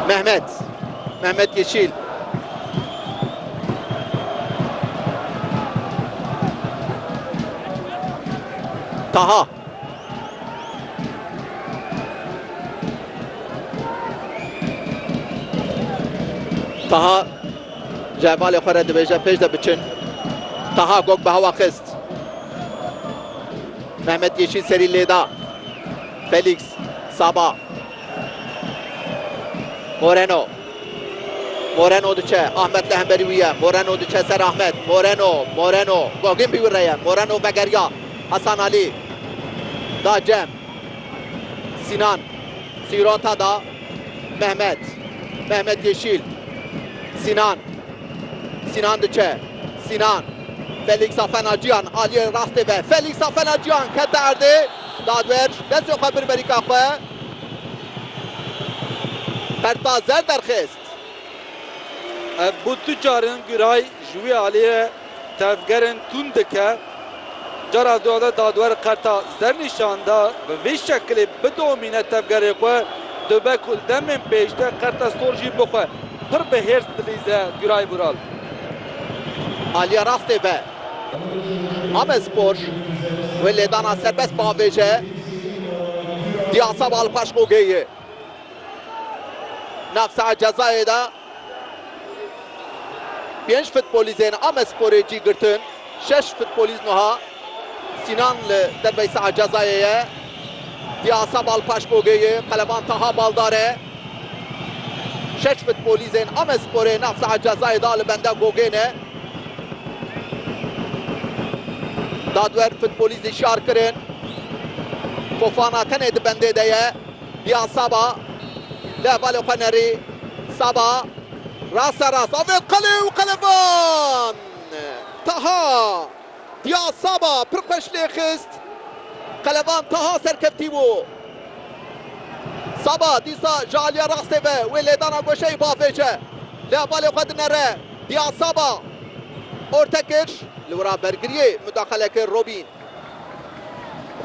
Mehmet. Mehmet Yeşîl. Taha. Taha ji hevalê xwe re dibêje pêş de biçin. Taha gog bi hewa xist. Mehmet Yeşîl serî lêda. Felîks. Saba. Moreno. Moreno diçe. Ahmet li hemberî wî ye. Moreno diçe ser Ahmet. Moreno. Moreno. Gogin bî wî re ye. Moreno vegeriya. Hasan Alî. Da Cem. Sînan. Sîrota da Mehmet. Mehmet Yeşîl. Sînan. Sînan diçe. Sînan. Felîksa fena ciyan aliyê rastê ve. Felîksa fena ciyan kete erdê. Dadwer ji destê xwe bir berîka xwe Berta Zer derxist. Ev bû du carin Guray ji wî aliyê tevgerên tund dike. Cara duade dadwer Qerta Zer nîşan da bi vî şekilê bidomîne tevgerê xwe, dibe ku li demên pêşde Qerta Sor jî bixwe pir bi hêrs dilîze Guray Vural. Aliya rastê be. Amedspor wê lêdana serbest bavêje Diyasabal Paşkogeyê nav saha cezayê de pênc futbolîzên Amedsporê cî girtin. Şeş futbolîz nuha Sinan li dervey saha cezayê ye. Piyasa Balpaşbogê yê Qeleban Taha Baldar e. Şeş futbolîzên Amesporê nav saet cezayê da li benda gogêne. Dadwer futbolîzî şar kirin. Fofana tenê di bendê de ye. Diya Saba li hevalê xwe nerî. Saba rasta rast avêt qelê û Qeleban Taha Pia Saba pir xweş lê xist. Qeleban taha serkeftî bû. Saba dîsa ji aliya rastê ve wê lêdana goşeyê biavêje. Lê hevalê xwe dinere. Pia Saba orte kir. Li wira bergiriyê mudaxale kir Robîn.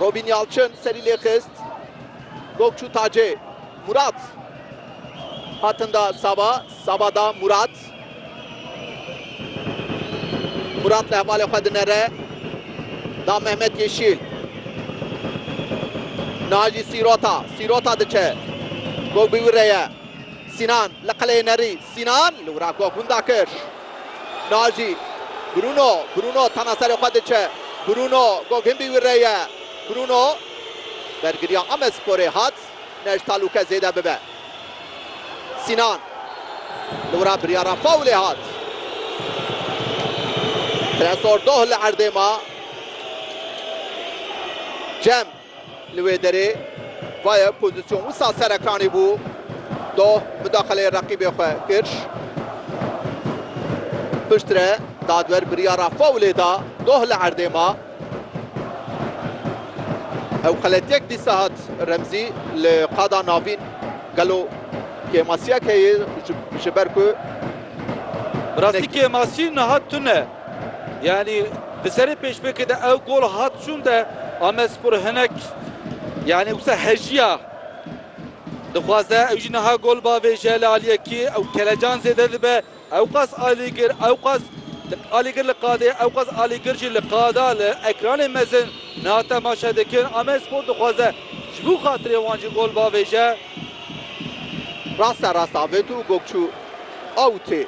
Robîn Yalçin serî lê xist. Gog çû tacê. Murat hatin da Saba. Saba da Murat. Murat li hevalê xwe dinere, da Mehmet Yeşîl. Niha jî Sîrota, Sîrota diçe. Gog bi wî re ye. Sînan li qeleyê nerî. Sînan li wira gog hûn dakir. Niha jî Bruno, Bruno tena serê xwe diçe. Bruno, gog hin bi wî re ye. Bruno, bergiriya Amedsporê hat. Ne ji talûke zêde bibe. Sînan li wira biryara fawlê hat. Tresor doh li erdê ma. Cem li wê derê. Vayê pozîsyon wisa serekanî bû. Doh mudaxeleyê reqîbê xwe kir. Piştre dadwer biryara fawlê da. Doh li erdê ma. Ew xeletiyek dîsa hat Remzî li qada navîn gelo kêmasiyek heye ji ber ku Bi rastî kêmasî niha tune. Yanî di serê pêşbirkê de ew gol hat çûn de Amedspor hinek yanî wisa hejiya dixwaze. Ew jî niha gol bavêje li aliyekî ew kelecan zêde dibe. Ewqas Alîgir Ewqas Alîgir li qadê Ewqas Alîgir jî li qada li ekranê mezin niha temaşe dikin. Amedspor dixwaze ji bo xatirê wan jî gol bavêje. Raste raste Avet û Gokçû awitê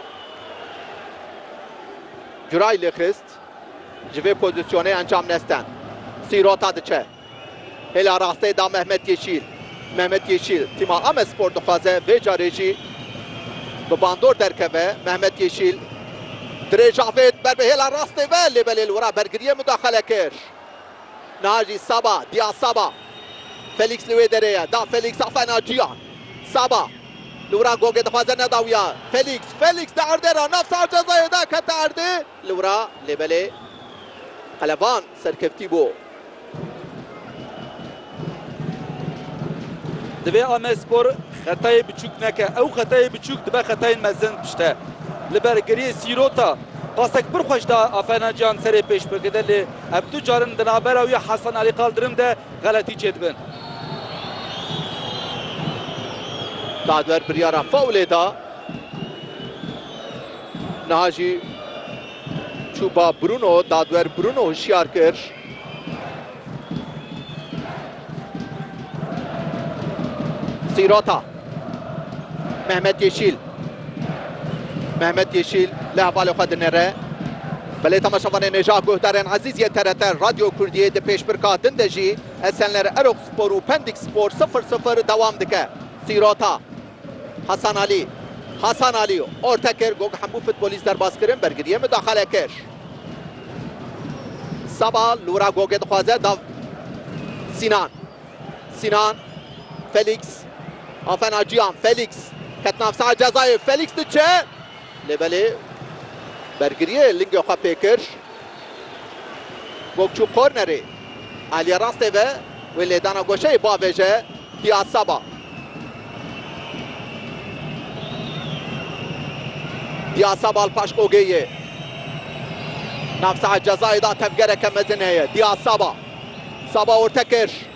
Curay lêxist. Ji vê pozisyonê encam nestan. Sîrota diçe. Hêla rasteyê da Mehmet Yeşîl. Mehmet Yeşîl, tîma Amedspor dixwaze vê carê jî bi bandor derkeve. Mehmet Yeşîl, dirêj avêt ber bi hêla rastê ve lê belê li wira bergiriyê mudaxale kir. Niha jî Saba, Dia Saba. Felîks li wê derê ye, da Felîks afayna Ciyan. Saba, li wira Gogê dixwaze nedawiya. Felîks, Felîks di erdê re nav sar cezayê de kete erdê. Li wira lê belê qeleban. Serkeftî bo. Divê Amedspor xetayê biçûk neke. Ew xetayê biçûk dibe xetayên mezin pişte. Li ber geriyê Sîrota pasek pir xweş da Aferna Cihan serê pêşbirkê de lê ev du carin di navbera wî Hasan Alî Kaldirim de xeletî çêdibin. Dadwer biryara faulê da. Niha jî. Çû ba Bruno, dadwer Bruno hişyar kir. Sîrota. Mehmet Yeşîl. Mehmet Yeşîl li hevalê xwe dinêre. Belê temaşevanê Nejah Guhdarên Ezîz yê TRT Radyo Kurdiyê di pêşbirka din de jî Esenler Erok Spor û Pendik Spor sifir sifir dewam dike. Sîrota. Hasan Alî, Hasan Alî orta kir got hemû futbolîst derbas kirin, bergiriyê mudaxale kir. Saba li wira gogê dixwaze da Sînan. Sînan, Felîks, Afena Ciyan, Felîks ket nav saha cezayê, Felîks diçe, Lê belê bergiriyê lingê xwe pê kir. Gog çû kornerê. Aliye rastê ve wê lêdana goşeyê bavêje Piyad Saba. Piyad Saba li paş Gogê yê. Navsaha cezayê da tevgereke mezin heye. Piyad Saba. Saba orte kir.